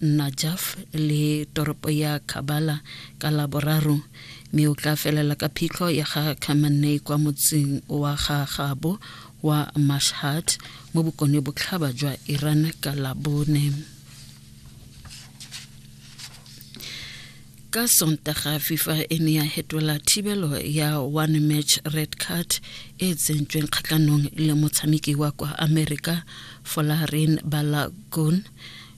Najaf le toropo ya Khabala ka Laboraro mme o tla felela ka phitlho ya ga Khamenei kwa motseng wa ga gabo wa Mashhad mo bokone botlhaba jwa Iran ka Labone. ka sontaga fifa e ne ya hetola thibelo ya one match red card e tsentsweng kgatlhanong le motshameki wa kwa america folarin balagon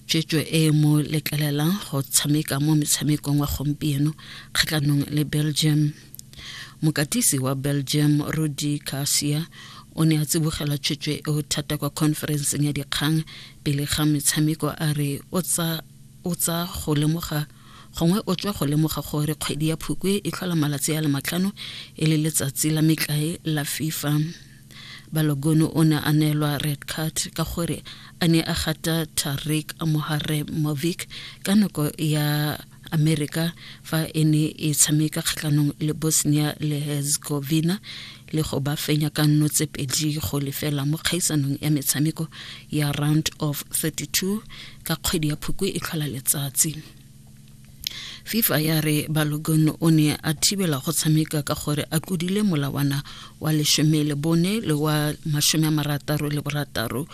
tswetswe e mo letlelelang go tshameka mo metshamekong wa gompieno kgatlhanong le belgium mokatisi wa belgium rudy garcia o ne a tsibogela tswetswe eo thata kwa conferenceng ya dikgang pele ga metshameko a re o tsa go lemoga gongwe o tswa go lemoga gore kgwedi ya phukwe e tlhola malatsi a le matlhano e le letsatsi la metlae la fifa Balogun o ne a neelwa red card ka gore a ne a gata Tariq Moharremovic ka nako ya Amerika fa e ne e tshameka kgatlhanong le Bosnia le Herzegovina le go ba fenya ka nno tse pedi go lefela mo kgaisanong ya metshameko ya round of 32 ka kgwedi ya Phukwi e tlhola letsatsi. fifa ya re balogun o ne a thibela go tshameka ka gore a kudile molawana wa lesome le bone le wa masome a marataro le borataro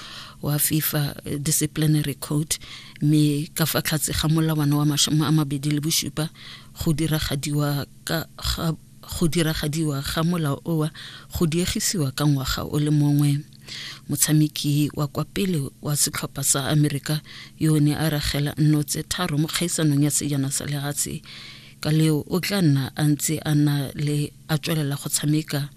wa fifa disciplinary code mme ka fa tlhatse ga molawana wa masome a mabedi le bosupa go diragadiwa ka ga go diragadiwa ga molao owa go diegisiwa ka ngwaga o le mongwe motshameki wa kwa pele wa setlhopha sa amerika yo o ne a ragela nno tse tharo mo kgaisanong ya sejana sa lehatshe ka leo o tla nna a ntse a na le a tswelela go tshameka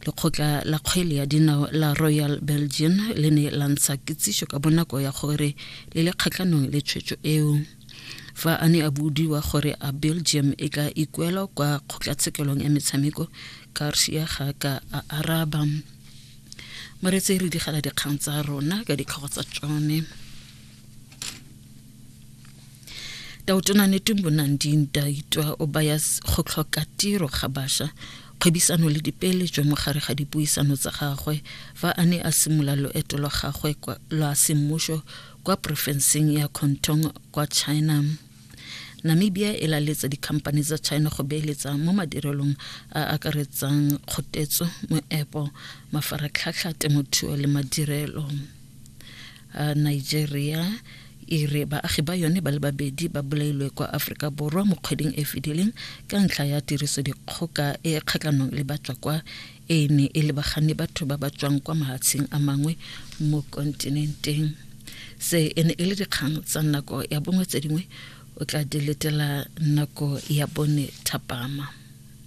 lekgotla la kgwele ya dinao la royal belgian le ne la ntsha kitsiso ka bonako ya gore le le kgatlhanong le tshwetso eo fa a ne a budiwa gore a belgium e ka ikuelwa kwa kgotlatshekelong ya metshameko garcia ga ka a araba moretse re digela dikgang tsa rona ka ditlhogo tsa tsone taotona netumbo nanding daitwa o baya go tlhoka tiro ga basha kgwebisano le dipeeletso mo gare ga dipuisano tsa gagwe fa a ne a simula loeto lwa gagwe lwa semmuso kwa porofenseng ya contong kwa china Namibia e laletse dikhamphane tsa China go beeletsa mo madirelong a akaretsang kgotetso, moepo, mafaratlhatlha, temothuo le madirelo. Nigeria e re baagi ba yone ba le babedi ba bolailwe kwa Aforika Borwa mo kgweding e fedileng ka ntlha ya tirisodikgoka e kgatlhanong le batswa kwa e ne e lebagane batho ba ba tswang kwa mahatsheng a mangwe mo kontinenteng se e ne e le dikgang tsa nako ya bongwe tse dingwe o tla di letela nako ya bone thapama